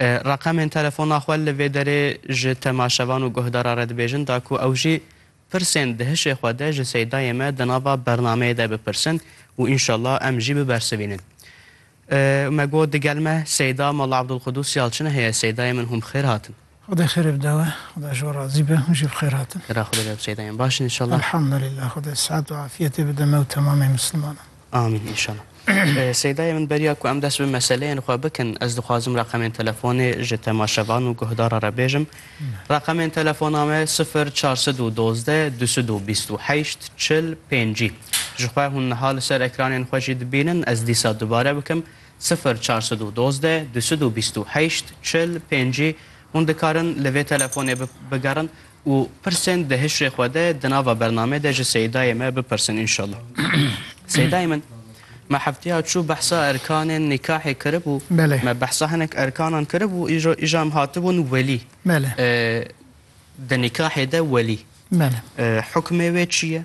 Reqemên telefona xwe li vê derê ji temaşevan û guhdara re dibêjin da ku ew jî pirsên di hişê xwe de ji Seydayê me di nava bernameyê de bipirsin û înşallah em jî bibersivînin. Me got digel me Seyda Molla Abdulqudûs Yalçin heye Seydayê min hûn bi xêr hatin. Xwedê xêrê bide we. Xweda ji we razî be. Hûn jî bi xêr hatin. Xêra Xwedê bide tu çê dayên baş in înşallah. Elhamdulillah Xwedê sihet û afiyetê bide me û temamê misilmanan. Amîn înşallah. Seydayê min beriya ku em dest bi meseleyên xwe bikin ez dixwazim reqemên telefonê ji temaşevan û guhdaran re bêjim. Reqemên telefona me sifir çar sed û dozdeh du sed û bîst û heşt çil pêncî. Jixwe hûn niha li ser ekranên xwe jî dibînin ez dîsa dubare bikim Sifir çar sed û dozdeh du sed û bîst û heşt çil pêncî hûn dikarin li vê telefonê bigerin û pirsên di hişrê xwe de di nava bernamê de ji Seyîdayê me bipirsin înşallah. Seyîdayê min me hefteya çû behsa erkanên nîkahê kiribû, me behsa hinek erkanan kiribû îro îja em hatibûn welî. Di nîkahê de welî hukmê wê çi ye?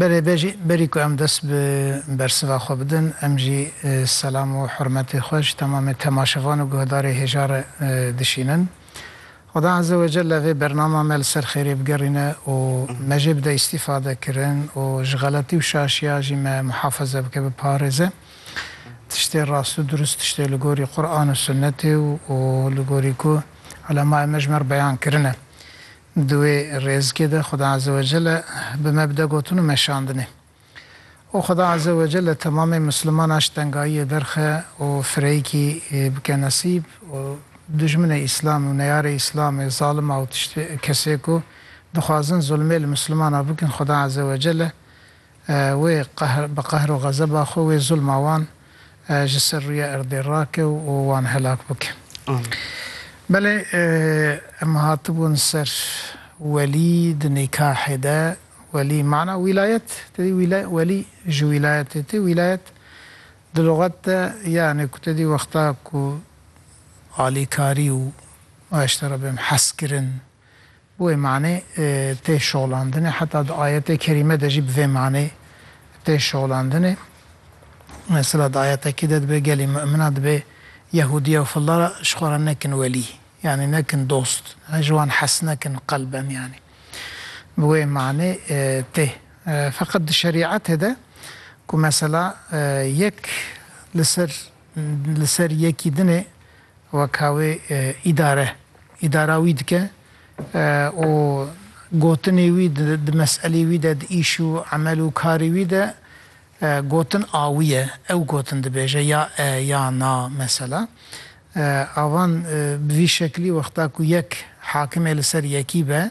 Belê bejî, berî ku em dest bi bersiva xwe bidin, em jî selam û hurmetê xwe ji temamê temaşevan û guhdarê hêja re dişînin. Xweda Eze we Celle vê bernama me li ser xêrê bigerîne û me jê bide îstîfadekirin û ji xeletî û şaşiya jî me muhafeze bike, biparêze. Tiştê rast û durust tiştê li gorî Quran û Sunnetê û li gorî ku ulemaê me ji me re beyan kirine. Di wê rêzikê de Xweda Azze ve Celle bi me bide gotin û meşandinê. Û Xweda Azze ve Celle temamê Mislimanan ji tengayiyê derxe û fireyîkî bike nesîb û dijminê Îslamê û neyarê Îslamê, zalima û tiştê kesê ku dixwazin zulmê li Mislimanan bikin Xweda Azze ve Celle Wê qehr bi qehr û xezeba xwe wê zulma wan ji ser rûyê erdê rake û wan helak bike. Belê em hatibûn ser welî di nîkahê de welî mana wîlayet te dî welî ji wîlayetê tê wîlayet di luxet de yanî ku te dî wexta ku alîkarî û waştera bim hezkirin Bi wê manê tê şolandinê. Heta di ayetê kerîme de jî bi vê manê tê şolandinê. Mesela di ayetekî de dibe gelê mu'mina dibe Yehûdiya û filla re ji xwe re nekin welî, yanî nekin dost, ji wan hes nekin qelben yanî. Bi wê manê tê. Feqet di şerî'etê de ku mesela yek li ser Li ser yekî din e weka wê îdare îdara wî dike û gotinê wî di meselê wî de di îş û emel û karê wî de gotin a wî ye. Ew gotin dibêje ya e ya na mesela. Avan bi vî şeklî wexta ku yek hakimê li ser yekî be